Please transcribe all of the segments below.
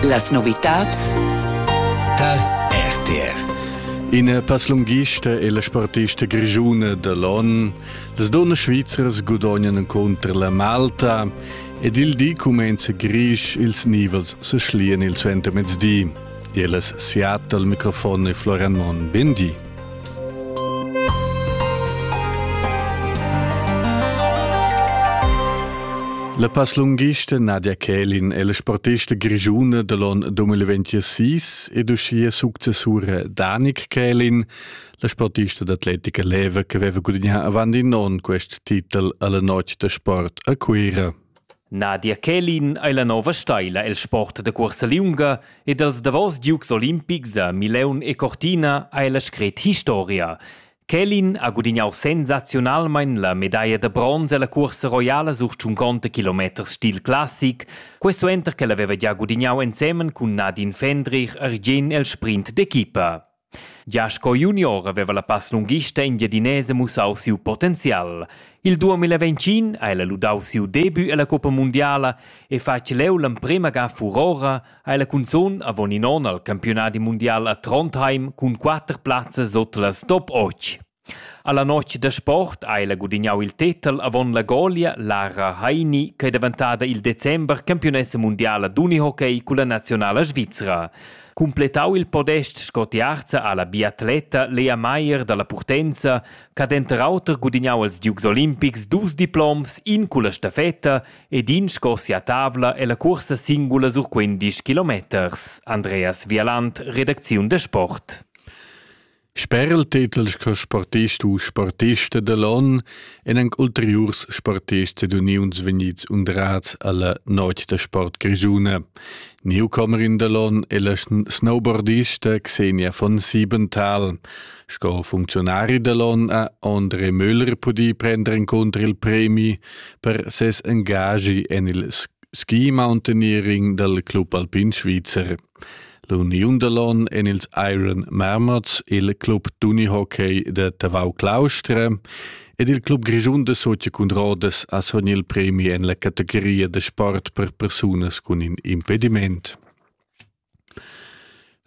Las novitads tal RTR Ina passlunghista e la sportista grigiuna da l'on, las donnas svizras gudognan encunter la Malta ed il di cumenza grisch ils nivels se schlien il suentermezdi. Ellas siat al microfon e Florian Mon. Bendi. La passlunghista Nadia Kählin è la sportista grigiuna da l'on 2026 ed uschia successura Danik Kählin, la sportista d'atletica leva che aveva gudagnà avant in onn quest titel alla notg da sport a Cuira. Nadia Kälin ei la nova steila el sport da cuorsa liunga ed els davos giugs olimpics a Mileun e Cortina ei la scret historia. Kälin ha gudignau sensaziunalmein la medaglia da bronz ella cuorsa roiala sur 50 km stil classic, quei suenter ch'el haveva gia gudignau ensemen cun Nadine Fendrich argien el sprint d'equipa. Gia sco junior aveva la passlunghista engiadinesa mussau siu potenzial. Il 2021 ha ella ludau siu debut ella coppa mundiala e fatg leu l'emprema ga furora ha ella cunzun avon in onn al campiunadi mundial a Trondheim cun quatter plazzas sut las top 8. Alla notg da sport ha ella gudignau il tetel avon la golia Lara Heini ch'ei daventada il december campiunessa mundiala d'unihockey culla naziunala svizra. Cumpletau il podest sco tiarza ha la biatleta Lea Meier dalla Purtenza ch'ha denter auter gudignau als Dukes olimpics dus diploms, in culla stafetta ed in sco sia tavla ella cuorsa singula sur quindisch kilometers. Andreas Vialand, redacziun da sport. Sper il tetel sco sportist u sportista da l'on èn anc ulteriurs sportists ed uniuns vegnids undrads a la notg da sport grischuna. Newcomerin da l'on è la snowboardista Xenia von Siebenthal. Sco funcziunari da l'on ha André Möller pudì prender encunter il premi per ses engagi en il ski mountaineering dal Club Alpin Svizzer. L'uniun da l'on en ils Iron Marmots, il club d'unihockey da Tavau Claustra ed il club grischun da Socia cun rodas ha son il premi en la categoria da sport per persunas cun in impediment.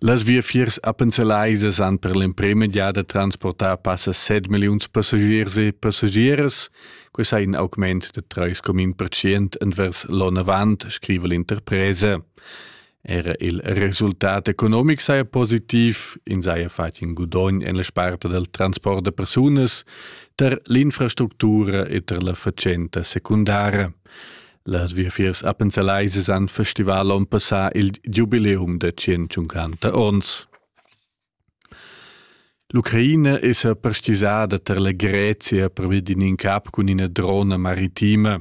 Las viafiers appenzelaisas han per l'emprema giada transportà passa 7 milliuns passagiers e passagieras. Questo è in augment da 3,1% envers l'onn avant, scrive l'interpresa. Era il resultat economic saja positiv, ins haja fatg in gudogn en la sparta dal transport da persunas, tar l'infrastructura e tar la fatschenta secundara. Las viafiers appenzelaisas han festival onn passà il giubileum da 150 onns. L'Ucraina esa pastizada tar la Grezia pervi d'in incap cun üna drona maritima.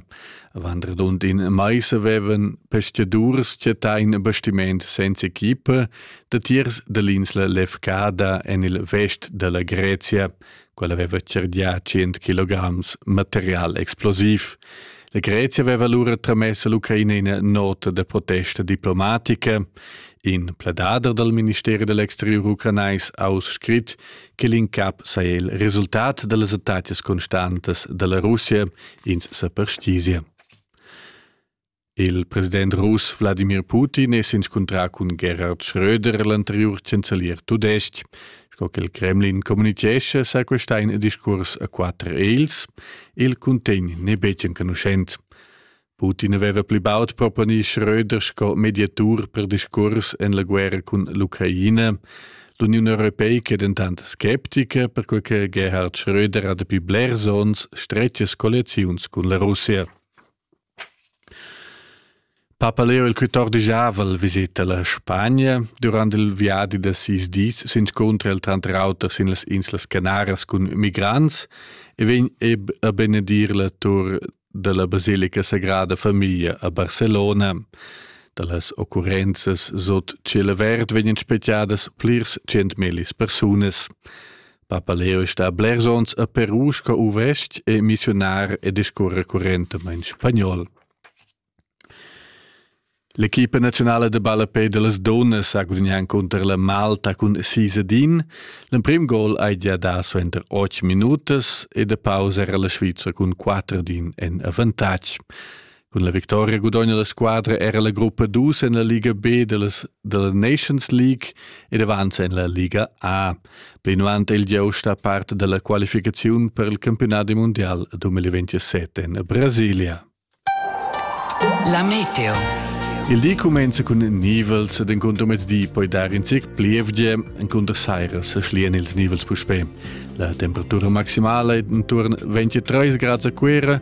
Avant radund in mais avevan pastadurs chattà in bastiment senza equipa datiers da l'insla Lefkada en il vest da la Grezia, quel aveva cergià tschient kilograms material explosiv. La Grezia aveva allura tramess all'Ucraina ina nota da protesta diplomatica. In pledader dal Ministeri dell'exterior ucranais ha scrit che l'incap saja il resultat da las attacas constantas dalla Russia ins sa perstizie. Il president russ Wladimir Putin è s'inscuntrà cun Gerhard Schröder, l'anteriur chancelier tudestg. Sco che il Kremlin communitgescha, sa questa in discurs a quatter els. Il cuntegn n'è betg enconuschent. Putin aveva pli baud proponì Schröder sco mediatur per discurs en la guerra cun l'Ucraina. L'Uniun Europeica è dentant sceptica, perquai che Gerhard Schröder ha dapi blers onns stretgas colliaziuns cun la Russia. Papa Leo il quatordisavel viseta la Spagna durant il viadi da sis dis s'inscuntra el tranter auter sin las Inslas Canaras cun migrants e vegn a benedir la tur dalla basilica Sagrada Famiglia a Barcelona. Dallas occurrenzas sut tschel avert vegnan spegliadas plirs tschient millis persunas. Papaleo è stà blers onns a Peru sco uvestg e missionar e discurrer currentamain spagnol. L'equipa nazionala de ballapé de las donas ha gudagnà cunter la Malta cun sis a din. L'emprim gol hai già dà suenter otg minutas e de pausa era la Svizra cun quatter din en avantatg. Cun la victoria gudogna la squadra era la gruppa dus en la Liga B della, della Nations League ed avanza en la Liga A. Plinavant è il giust a part della qualificaziun per il campionat di mondial 2027 en Brasilia. La meteo. Il di comincia cun nivels ed incontro mezdi poi dar in zic plievgie incontro sairas schlian ils nivels puspè. La temperatura maximala è intorno 23 gradi a Cuera